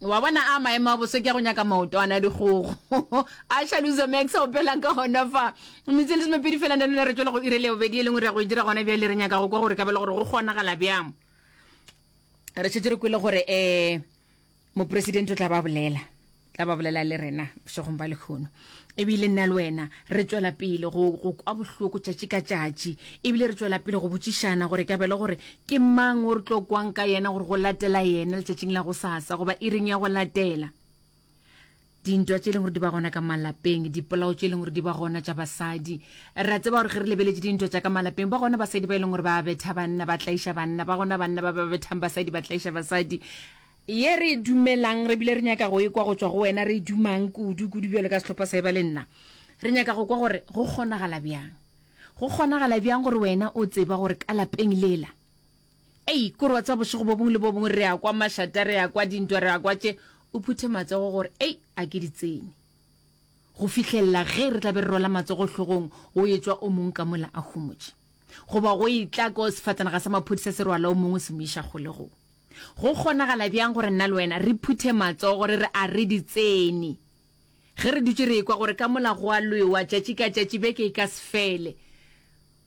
wa bona a maemo a boso ke a go nyaka maoto a na dikgogo a shaluzo max o pelang ka gona fa metse le semepedi fela ne lone re tswela go ire le bobedi e lengwe re ya go e dira gona bjale re nyaka go kwa gore ka bele gore go kgonagala bjang re šetse re kwele gore um mopresidente o tla ba bolela tla ba bolela le rena bošegong ba lekgono ebile nna le wena re tšwela pele go go kwa bohloko tšatši ka tšatši ebile re tšwela pele go botšišana gore ka bele gore ke mang o re tlo kwang ka yena gore go latela yena letšatšing la go sasa goba e reng ya go latela dintwa tše e leng gore di ba gona ka malapeng dipolao tše e leng gore di ba gona tša basadi ra tseba gore ge re lebeletše dintwa tša ka malapeng ba gona basadi ba e leng gore ba betha banna ba tlaiša banna ba gona banna ba ba bethang basadi ba tlaiša basadi Ye re e dumelang, re bile re nyaka go e kwa go tšwa go wena, re e dumang kudu, kudu bjalo ka sehlopha sa Eba le nna. Re nyaka go kwa gore go kgonagala bjang. Go kgonagala bjang gore wena o tseba gore ka lapeng lela, ei, k'ore wa tseba bošego bo bongwe le bo bongwe re ya kwa mašata, re ya kwa dintwa, re ya kwa tše, o phuthe matsogo gore, ei, a ke di tsene. Go fihlelela ge re tla be re rwala matsogo hlogong, go etšwa o mongwe ka mola a humotše. Goba go etla ko sefatanaga sa maphodisa se rwala o mongwe se mo iša kgolegong. Go kgonagala bjang gore nna le wena re phuthe matsogo re re a re di tsene ge re dutše re ekwa gore ka mola go a lwewa tšatši ka tšatši, beke e ka se fele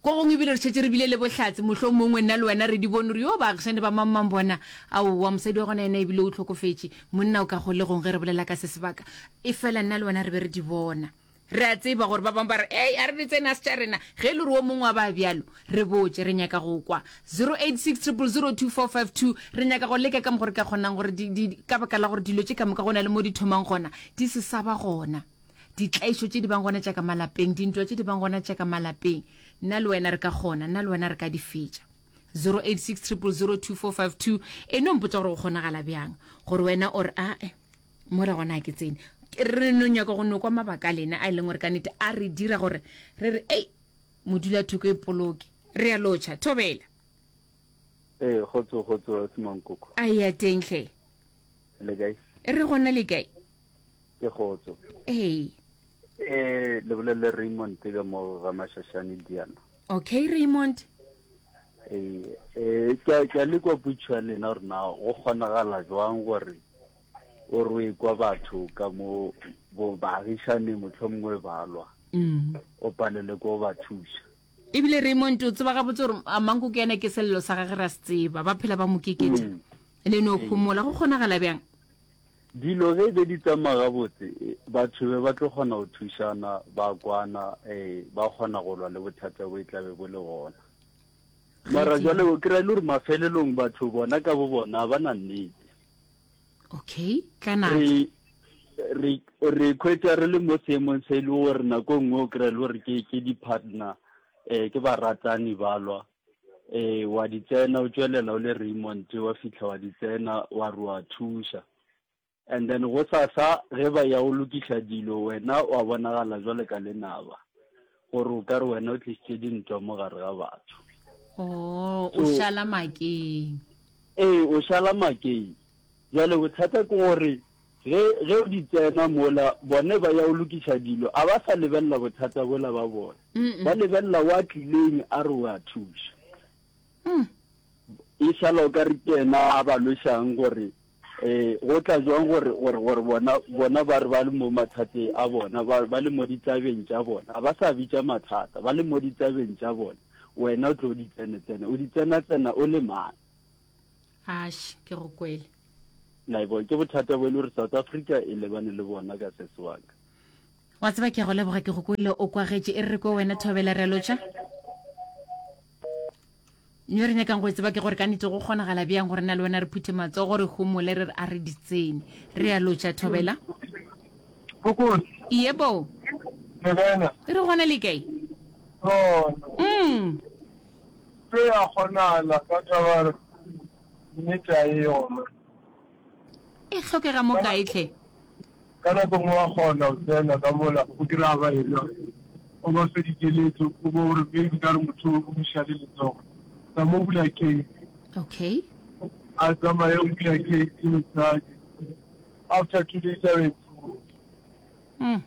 ko gongwe ebile re šetše re bile le bohlatse mohlomongwe nna le wena re di bone gore yoo baagišane ba mang-mang bona? Aowa, mosadi wa gona yena ebile o hlokofetše, monna o ka kgolegong ge re bolela ka se sebaka, efela nna le wena re be re di bona. Re a tseba gore ba bangwe ba re, Ei, a re di tsenas tša rena. Ge e le gore wo mongwe wa ba bjalo, re botše. Re nyaka go kwa. 0860002452, Re nyaka go leka ka mokgwa re ka kgonang gore di, di, di, ka baka la gore dilo tše ka moka go na le mo di thomang gona, di se sa ba gona. Ditlaišo tše di bang gona tša ka malapeng, dintwa tše di bang gona tša ka malapeng, nna le wena re ka kgona, nna le wena re ka di fetša. 0860002452, E no mpotša gore go kgonagala bjang gore wena o re, Ae. mo re gona ke tsene re no nyaka go nokwa mabaka a lena a e leng gore ka nete a re dira gore re re ei modula thoko e poloke re ya lotšha thobela ee gotso gotso semankoko a ya tenhle le kae re gona le kae ke gotso ee ee le bolele raymond ka mo ga mashashane diana Okay Raymond. Eh, eh, ke ke le kwa putshwa lena gore na go kgonagala jwang gore o re kwa batho ka mo bo baagišane motlho mongwe balwa mm. o palele ko ba thusa ebile raymond o tseba gabotse gore amanko ke ene ke selelo sa gage ra se tseba ba phela ba mo kekeja mm. le no gomola go kgonagala bjang Dilo ge e be di tsamaya gabotse, batho be ba tlo kgona go thušana, ba kwana, ee, ba kgona go lwa le bothata bo e tla be bo le gona. Mara jwale o kry-a e le gore mafelelong batho bona ka bo bona ba na nnete. Okay, tla natla. Re, re, re khwetsa re le mo seemong se e le gore nako e nngwe o kry-a e le gore ke, ke di-partner, um ke baratani ba lwa. Ee, wa di tsena o tšwelela o le Raymond wa fihla wa di tsena wa re wa thuša and then go sasa ge ba ya go lokiša dilo wena wa bonagala jwale ka lenaba gore o ka re wena o tlisitše dintwa mo gare ga batho o o šala makeng ee o šala makeng Bjale bothata ke gore ge, ge o di tsena mola, bone ba ya go lokiša dilo, a ba sa lebelela bothata bola ba bona. Ba lebelela wa tlileng a re wa thuša. E šala o ka re ke yena a ba lwešang gore um go tla jwang gore, gore, gore bona, bona ba re ba le mo mathateng a bona, ba, ba le mo ditabeng tša bona. A ba sa bitša mathata, ba le mo ditabeng tša bona. Wena o tlo o di tsene-tsene, o di tsena-tsena o le mang? ash ke go kwele naibo ke bothata bo e le gore south africa e lebane le bona ka sese waka wa tseba ke go leboga ke go kwele o kwagetše e re ko wena thobela re lotša nyo re nyakang go e tseba ke gore ka nete go kgonagala bjang gore na le wena re phuthe matso gore humole re re a re ditsene re ya lotša thobela iye bo e re gona le kae mm. Tlo ya kgonahala ka taba re nnete a e yona. E hlokega mo kae tlhe? Ka nako nngwe wa kgona go tsena ka mola o kry-a ba elwa o ba fe dikeletso o bo gore maybe ka re motho o buša le letsogo tsa mo bula case Okay. a tsamaye o bula case mosadi after two days a be Mm.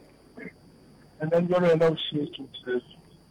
and then jalo wena o šetše o tsetse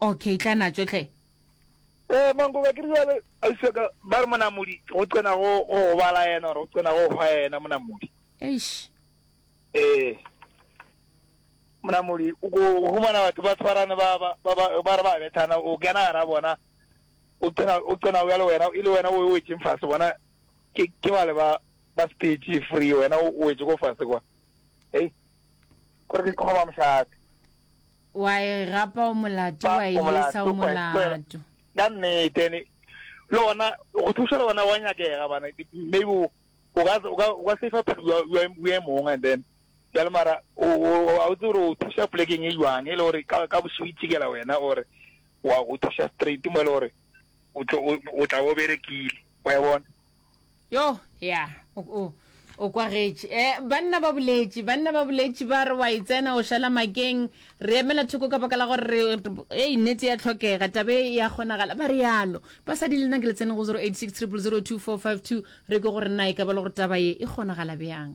Ok, tla natšo hle. Ee, Mangoba, ke rile bjale, ausi wa ka, ba re monamodi go qena go go bala yena, gore go qena go go hwa yena monamodi. Eish. Ee. Monamodi, o ko o humana batho ba tshwarane ba ba ba ba ba re ba bethana, o kena gara bona, o qena o qena bjale wena e le wena o wetšeng fase, bona ke ke bale ba ba stage free, wena o wetše ko fase kwa. Hei, gore ke kgoba mošate. wa e gapa o molato wa e lesa o molato ka nnete le gona go thusa le gona wa nyakega bana maybe o ka o ka o ka safe phelo ya ya mong and then ya le mara o a o tsoro o thusa plekeng e jwang e le gore ka ka bosigo itshikela wena or wa go thusa straight mo le gore o tlo o tla o berekile wa e bona yo ya o, o, o kwagetše eh, banna ba boletše banna ba boletše ba re wa e tsena o šala makeng re emela thoko ka baka la gore re ei nnete ya tlhokega tabe ya kgonagala ba realo basadi le nna ke le tsene go 086 002 452 re ke gore nna e ka ba le gore taba ye e kgonagala bjang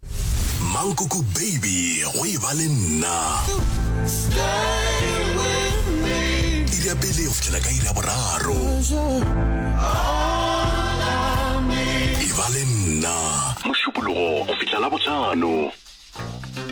Mankoko baby go e ba le nna. Iri ya pele go fitlhela ka iri ya boraro. E ba le nna. Mošupologo go fihla la botlhano.